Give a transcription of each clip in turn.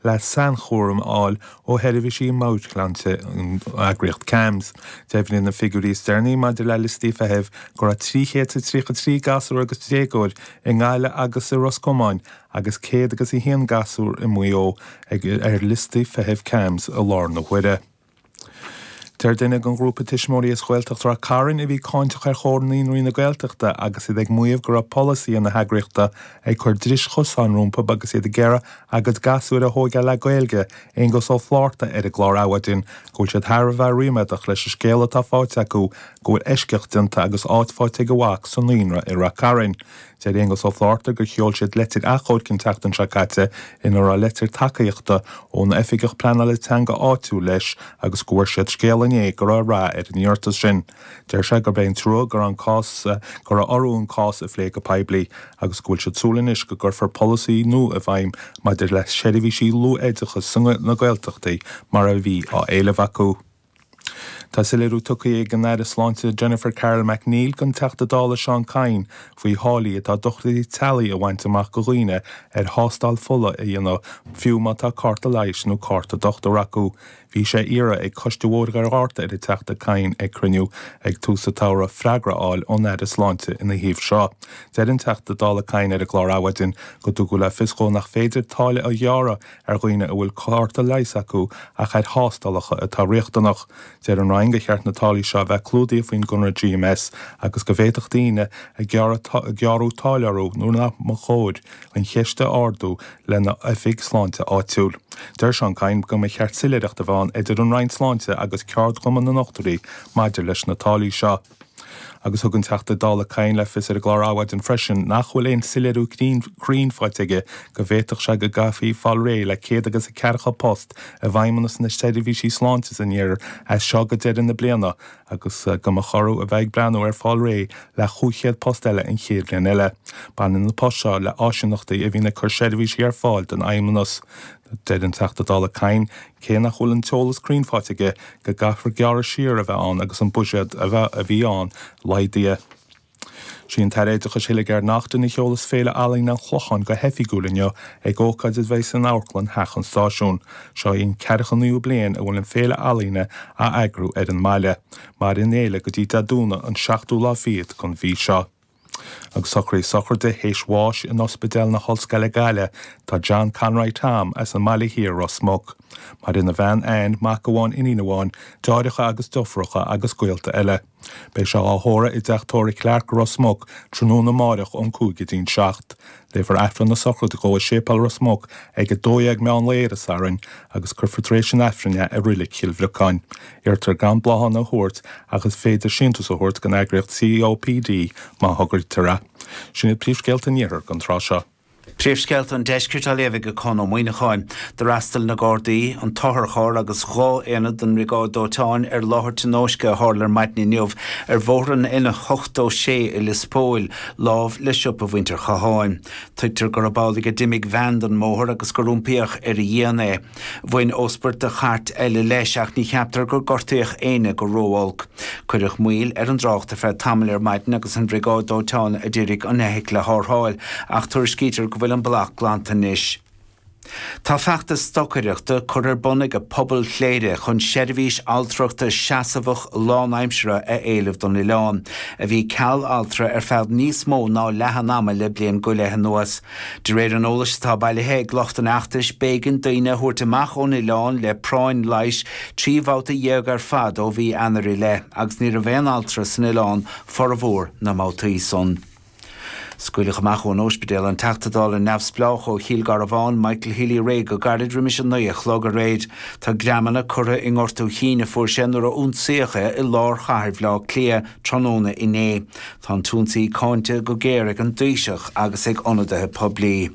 le sainchúram a fháil ó sheirbhísí meabhairshláinte an eagraíocht CAMHS. Deimhníonn na figiúirí is deireanaí maidir le liostaí feithimh go raibh 333 gasúr agus déagóir i nGaillimh agus i Ros Comáin agus 101 gasúr i Maigh Eo ar liostaí feithimh CAMHS i láthair na huaire. Deir duine den ghrúpa tuismitheoirí as Gaeltacht Ráth Cairn a bhí cáinteach ar Chomhar Naíonraí na Gaeltachta agus iad ag maíomh go raibh polasaithe na heagraíochta ag cur dris chosáin rompu agus iad ag iarraidh a gcuid gasúir a thóigeáil le Gaeilge, Aonghus Ó Flátharta ar an gclár Adhmhaidin, go bhfuil siad thar a bheith ríméadach leis an scéala atá faighte acu go bhfuil eisceacht déanta agus áit faighte ag a mhac sa naíonra i Ráth Cairn. Deir Aonghus Ó Flátharta gur sheol siad leitir achomhairc an tseachtain seo caite ina raibh leitir tacaíochta ón Oifigeach Pleanála Teanga áitiúil leis agus go bhfuair siad scéal inné go raibh rath ar an iarratas sin. Deir sé gurb é an trua go raibh orthu an cás a phlé go poiblí agus go bhfuil siad ag súil anois go gcuirfear polasaí nua i bhfeidhm maidir le seirbhísí luathoideachais sna Gaeltachtaí mar a bhí á éileamh acu. Tá soiléiriú tugtha ag an Aire Sláinte Jennifer Carroll MacNeill don Teachta Dála Seán Kyne faoi tháillí atá dochtúirí teaghlaigh a bhaint amach do dhaoine ar thástáil fola a dhéanamh fiú má tá cárta leighis nó cárta dochtúra acu. Bhí sé iarrtha ag Coiste Bhóthar Dhoire Fhearta ar an Teachta Kyne ag cruinniú ag tús an tsamhraidh freagra a fháil ón Aire Sláinte ina thaobh seo. Deir an Teachta Dála Kyne ar an gclár Adhmhaidin go dtugadh le fios dhó nach féidir táille a ghearradh ar dhaoine a bhfuil cárta leighis acu ach ar thástálacha atá riachtanach. Deir an Roinn gur cheart na táillí seo a bheith clúdaithe faoin gconradh GMS agus go bhféadfadh daoine ar gearradh táille orthu nuair nach mba chóir an cheist a ardú lena n-oifig sláinte áitiúil. Deir Seán Kyne go mba cheart soiléireacht a bheith ann idir an Roinn Sláinte agus ceardchumann na ndochtúirí maidir leis na táillí seo. Agus thug an Teachta Dála Kyne le fios ar an gclár Adhmhaidin freisin nach bhfuil aon soiléiriú cruinn faighte aige go bhféadfadh sé go gcaithfí fáil réidh le céad agus a ceathracha post i bhFeidhmeannas na Seirbhísí Sláinte san iarthar as seo go deireadh na bliana agus go mba chóir a bheith ag breathnú ar fáil réidh le chúig chéad post eile an chéad bhliain eile. Baineann na poist seo le áisíneachtaí a bhíonn ag cur seirbhísí ar fáil don Fheidhmeannas. Deir an Teachta Dála Kyne cé nach bhfuil an t-eolas cruinn faighte aige go gcaithfear gearradh siar a bheith ann agus an buiséad a bhí ann laghdaithe. Sí an tAire Oideachais Hildegarde Naughton a sheolas Féile Ealaíne an Chlocháin go hoifigiúil inniu ag ócáid a bheidh san Amharclann Theach an Stáisiúin. Seo í an ceathracha naoú bliain a bhfuil an Féile Ealaíne á eagrú ar an mbaile. Maireann an fhéile go dtí Dé Domhnaigh an seachtú lá fichead den mhí seo. Agus socruithe sochraide théis bháis in Ospidéal na hOllscoile Gaillimh tá John Conroy Tom as an mBaile Thiar, Ros Muc. Maireann a bhean Anne, mac amháin, iníon amháin, deartháireacha agus deirfiúracha agus gaolta eile. Beidh sé á thórramh i dTeach Tórraimh Clarke, Ros Muc, tráthnóna amáireach ón cúig go dtí'n seacht. Léifear Aifreann na sochraide dhó i Séipéal Ros Muc ag 12:00 meán lae Dé Sathairn agus cuirfear tar éis an Aifrinn é i Reilig Chill Bhriocáin. Iarrtar gan bláthanna a thabhairt agus is féidir síntiús a thabhairt don eagraíocht COPD má thograítear é. Sin iad príomhscéalta an Iarthair don tráth seo. Príomhscéalta an Deiscirt á léamh ag Conn Ó Muíneacháin. D'fhreastail na Gardaí, an t-otharcharr agus dhá aonad den mBriogáid Dóiteáin ar láthair tionóisce a tharla ar maidin inniu ar bhóthar an N86 i Lios Póil, lámh le siopa mhuintir Chatháin. Tuigtear gurb amhlaidh a d'imigh veain den mbóthar agus gur iompaíodh ar a dhíon é. Bhain óspairt de chairt eile leis ach ní cheaptar gur gortaíodh éinne go ró-olc. Cuireadh moill ar an dtrácht ar feadh tamaill ar maidin agus an bhriogáid dóiteáin a d'iarraidh an fheithicil a tharrtháil ach tuairiscítear go bhfuil an bac glanta anois. Tá feachtas stocaireachta curtha ar bun ag pobal Chléire chun seirbhís altrachta seasamhach lánaimseartha a éileamh don oileán, a bhí ceal altra ar feadh níos mó ná leath an ama le bliain go leith anuas. De réir an eolais atá bailithe ag lucht an fheachtais, b'éigean daoine a thabhairt amach ón oileán le práinn leighis trí bhabhta dhéag ar fad ó mhí Eanáir i leith agus ní raibh aon altra san oileán formhór na mbabhtaí san. Scaoileadh amach ón ospidéal an Teachta Dála neamhspleách ó Chill Garbháin, Michael Healy-Rae go gairid roimis 9 a chlog aréir. Tá greamanna curtha i ngortú chinn a fuair sé nuair a ionsaíodh é i lár chathair Bhleá Cliath tráthnóna inné. Tá an t-ionsaí cáinte go géar ag an dTaoiseach agus ag ionadaithe poiblí.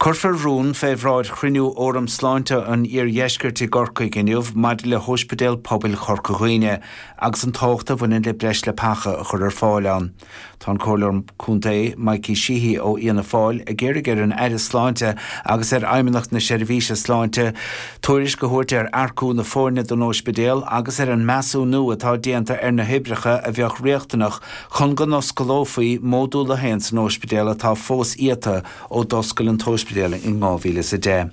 Cuirfear rún fé bhráid chruinniú Fhóram Sláinte an Iardheiscirt i gCorcaigh inniu maidir le hOspidéal Pobail Chorca Dhuibhne agus an tábhacht a bhaineann le breis leapacha a chur ar fáil ann. Tá an Comhairleoir Contae Mikey Sheehy ó Fhianna Fáil ag iarraidh ar an Aire Sláinte agus ar Fheidhmeannacht na Seirbhíse Sláinte tuairisc a thabhairt ar earcú na foirne don ospidéal agus ar an measúnú atá déanta ar na hoibreacha a bheadh riachtanach Chun go n-osclófaí módúl a haon san ospidéal atá fós iata ó d'oscail an t-ospidéal in 2010,